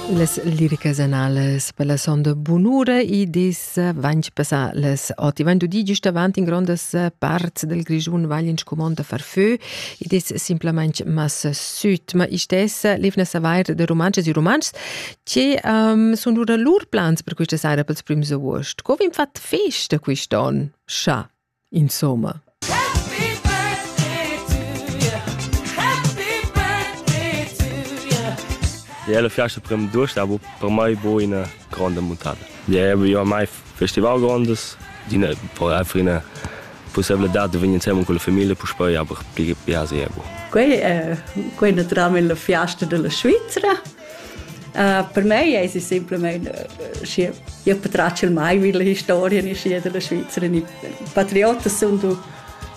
Las liricas analas per la sonda bunura id es vainch passà las ot. I vain dudi gist avant in grondas parts dal Grischun vagl in scumond da far fö. Id es simplamaing massa süt, ma istessa levna savair da rumantschas e rumantschs che um, sun lura lur plans per quista saira pels prims avuost. Co vegn fat festa quist'on? Scha? Insomma. Iela fiasta prem durstavo per mai bo ina gronda muntada. Ja vi ormai festival grondas d'ina por ina possibilità di vegni insieme con la famiglia per poi aber ja sehr bo. Quei è quei naturalmente la fiasta della Svizzera. Uh, per me es es simplamain uh, schi io patratg il mai vi le historia ni schi della Svizzera ni patriota sun du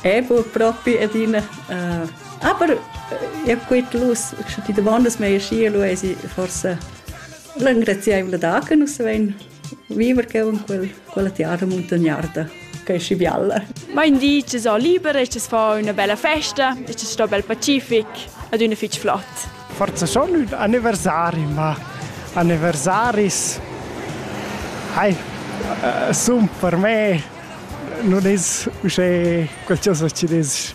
ebo propi adina uh, aber uh, io quit lus sche ti davandas mei schi lu es forse l'engraziaivla da che nus vein Viver cheu en quel, quella tiara muntagnarda, che è schi bialla. Ma in di ci so liber e ci fa una bella festa e ci sto bel pacific ed una fitg flott. Forse sono un anniversari, ma anniversaris hai, uh, sunt per me non è uschè qualcosa ci des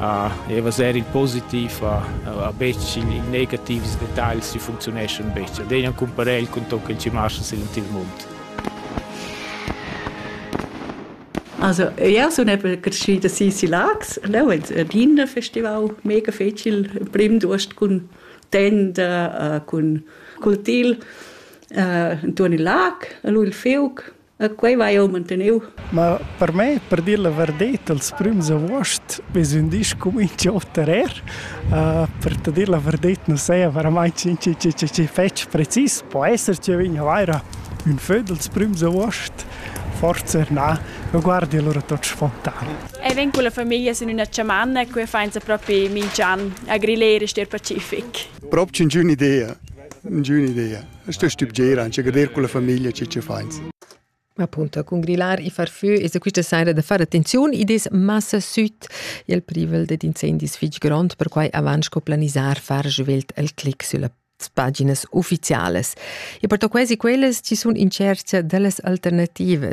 uh, e vaser il positiv a, a, a betg il, il negativs detagls si funzioneschan betg. Ad ena cumparel cun ton che ci marcha sin il mund. Also, ja, so eben geschieden sie sie lags, no, et Wiener Festival mega fecil prim durst cun tenda, uh, cun cultil, uh, in turn il lag, lui il fiuc, E quei vai jeu manteniu. Ma per me, per dir la verdet, els prüms avuost ves ün disc cumincio oter er. Uh, per te dir la verdet non saja verament chi, chi, chi, chi, chi fetg precis. Po esser che vegna vaira ün föd els prüms avuost, forse na, ma guardi allora tot spontan. E ven con la famiglia in una chamanna qui fainza proprio mingian a grillere ster pacific. Proprio un'idea, un'idea. Sta stübgera anche gader con la famiglia che che fainsa. Appunto, con grillar i farfü e se quista saira da far attenziun i des massa süt il privel ded incendis fich grond per quai avant sco planisar far juvelt al clic sulla paginas ufficiales. E perto quasi quellas ci sun incertia dellas alternativas.